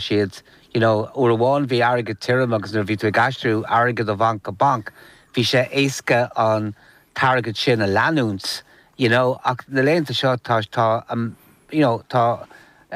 siad you know uair amháin bhí airgead tirim agus nuair a bhí tú ag aistriú airgead ó bhanc go banc bhí sé éasca an t-airgead sin a leanúint you know ach na laethanta seo tá tá an you know tá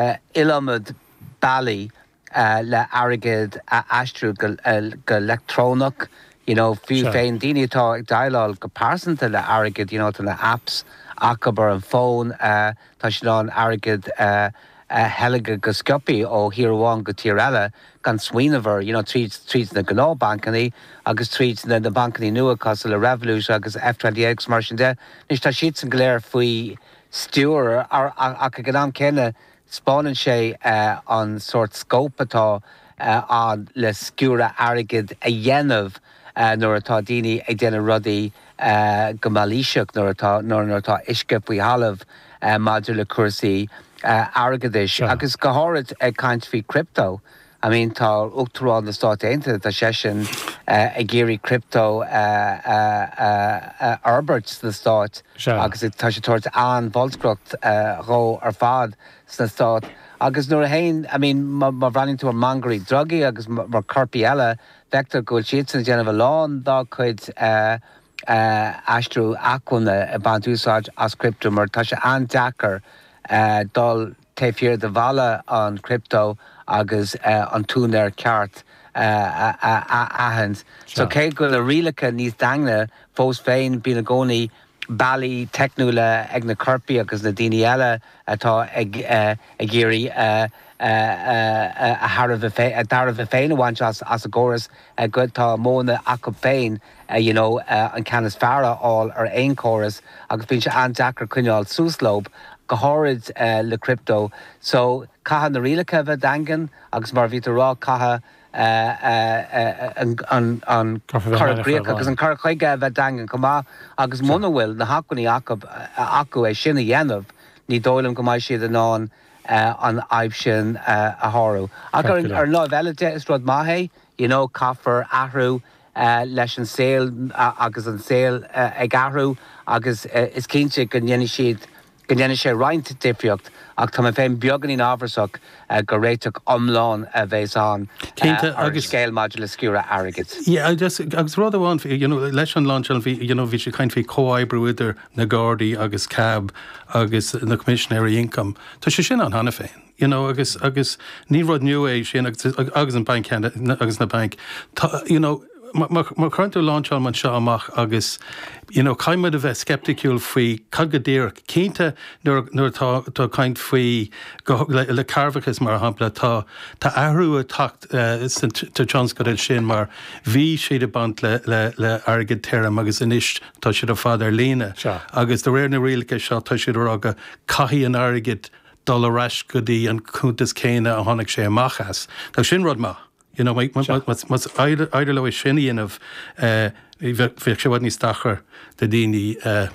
eh iliomad bealaí eh le airgead a aistriú go eh go leictreonach you know fiú féin daoine atá ag déileáil go pearsanta le airgead you know tá na apps acub ar an bhfón eh Tá siad in ann airgead a theilgeadh go sciopthaí ó thír amháin go tír eile gan smaoineamh air, you know, tríd, tríd na gnáthbhancannaí agus tríd na, na bancannaí nua, cosúil le Revolut agus N26 agus mar sin de. Anois tá siadsan go léir faoi stiúir, ar, ach ag an am céanna spáineann sé an sórt scóip atá ann le sciúradh airgid a dhéanamh. nuair atá daoine ag déanamh rudaí go mailíseach, nuair atá, nuair atá uisce faoi thalamh maidir le cúrsaí airgeadais. Agus go háirid ag caint faoi crypto, I mean tá Uachtarán na Stáit Aontaithe, tá seisean ag iarraidh crypto a fhorbairt sna Stáit agus tá sé ag tabhairt an-bholscaireacht dhó ar fad sna Stáit. Agus nuair a théann, I mean má bhreathnaíonn tú ar mhangairí drugaí agus ar coirpigh eile, Feictear go bhfuil siadsan ag déanamh a lán dá gcuid aistriú acmhainne ag baint úsáid as crypto mar tá sé an-deacair dul taobh thiar de bhalla an crypto agus an t-úinéir ceart a aithint. So cé go bhfuil na rialacha níos daingne fós féin bíonn i gcónaí bealaí teicniúla ag na coirpigh agus na daoine eile atá ag iarraidh a dtairbhe féin a bhaint as an gcóras, tá modhanna acu féin you know an ceann is fearr a fháil ar aon chóras agus bíonn sé an-deacair coinneáil suas leo, go háirid le crypto. So, caithfidh na rialacha a bheith daingean agus mar a bhí tú a rá, caithfidh. an cur i gcrích agus an cur chuige a bheith daingean chomh maith agus muna bhfuil na hacmhainní acu é sin a dhéanamh ní dóigh liom go mbeidh siad in ann an fhadhb sin a shárú. Ach ar an láimh eile de is rud maith é, you know, caithfear athrú leis an saol agus an saol ag athrú agus is cinnte go ndéanfaidh siad go ndéanfaidh sé roinnt difríocht, ach tá mé féin beagáinín amhrasach gur réiteach iomlán a bhéas ann ar an scéal maidir le sciúradh airgid. Agus rud amháin, you know, leis an lainseáil, bhí, you know, bhí siad ag caint faoi chomhoibriú idir na Gardaí agus CAB agus na Coimisinéirí Ioncaim. Tá sé sin ann cheana féin. You know, agus, agus ní rud nua é sin, agus, agus an banc, agus na bainc. Tá, you know, má, má, má chuireann tú na rialacha seo amach agus, you know, caithfidh muid a bheith sceiptiúil faoi cad go díreach, cinnte, nuair, nuair atá, atá caint faoi, go, le, le cearrbhachas mar shampla, tá, tá athrú ag teacht, eh, sa, sa tionscadal sin mar bhí siad ag baint le, le, le airgead tirim agus anois tá siad ar fad ar líne. Sure. Agus de réir na rialacha seo tá siad ag rá go caithfidh an airgead dul ar ais go dtí an cuntas céanna a tháinig sé amach as. Now sin rud maith, you know, má éiríonn leo é sin a dhéanamh, bheadh sé i bhfad níos deacra do dhaoine,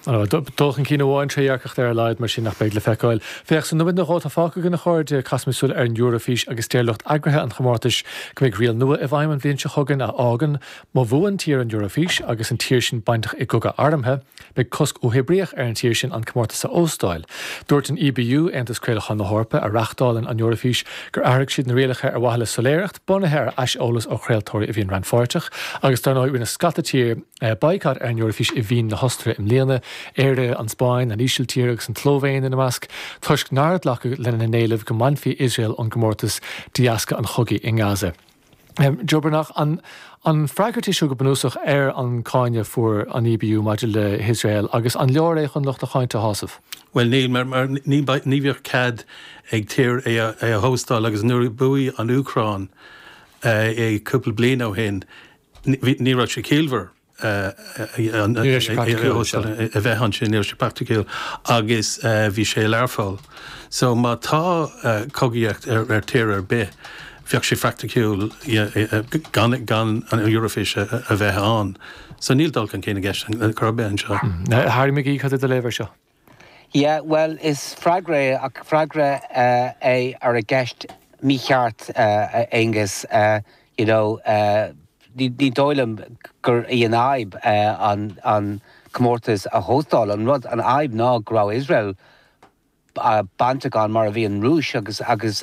Dul chun cinn amháin, trédhearcacht ar a laghad, mar sin, nach mbeidh le feiceáil. Féach, sna nóiméad nó dhó atá fágtha againn, a chairde, caithimis súil ar an Eoraifís agus deir lucht eagraithe an chomórtais go mbeidh riail nua i bhfeidhm an bhliain seo chugainn a fhágann má bhuann tír an Eoraifís agus an tír sin bainteach i gcogadh armtha, Beidh cosc uathoibríoch ar an tír sin an comórtas a óstáil. Dúirt an EBU, Aontas Craolacháin na hEorpa, a reáchtálann an Eoraifís, gur athraigh siad na rialacha ar mhaithe le soiléireacht, bunaithe ar aiseolas ó chraoltóirí a bhíonn rannpháirteach, agus dar ndóigh rinne scata tír baghcat ar an Eoraifís i Vín na hOstaire i mbliana, Éire, an Spáinn, an Ísiltír agus an tSlóivéin ina measc, toisc nár glacadh lena n-éileamh go mbainfí Iosrael ón gcomórtas de dheasca an chogaidh i nGaza. Jo Byrne, an freagairt í seo go bunúsach ar an gcáineadh a fuair an EBU maidir le hIosrael, agus an leor é chun lucht a cáinte a shásamh? Bhuel, ní, ní bheadh cead ag tír é a hóstáil, agus nuair a bhuaigh an Úcráin é cúpla bliain ó shin, ní raibh sé ciallmhar. a bheith ansin, ní raibh sé praiticiúil agus bhí sé i Learpholl. So má tá cogaíocht ar tír ar bith, bheadh sé praiticiúil gan an Eoraifís a bheith ann. So níl dul chun cinn i gceist ar chor ar bith anseo. Harry McGee, cad é do léamh air seo? Yeah, bhuel, is freagra é, ach freagra é ar an gceist mícheart, a Aonghus. You know, ní dóigh liom gur í an fhadhb an comórtas a óstáil. An rud, an fhadhb ná go raibh Iosrael bainteach ann mar a bhí an Rúis agus, agus,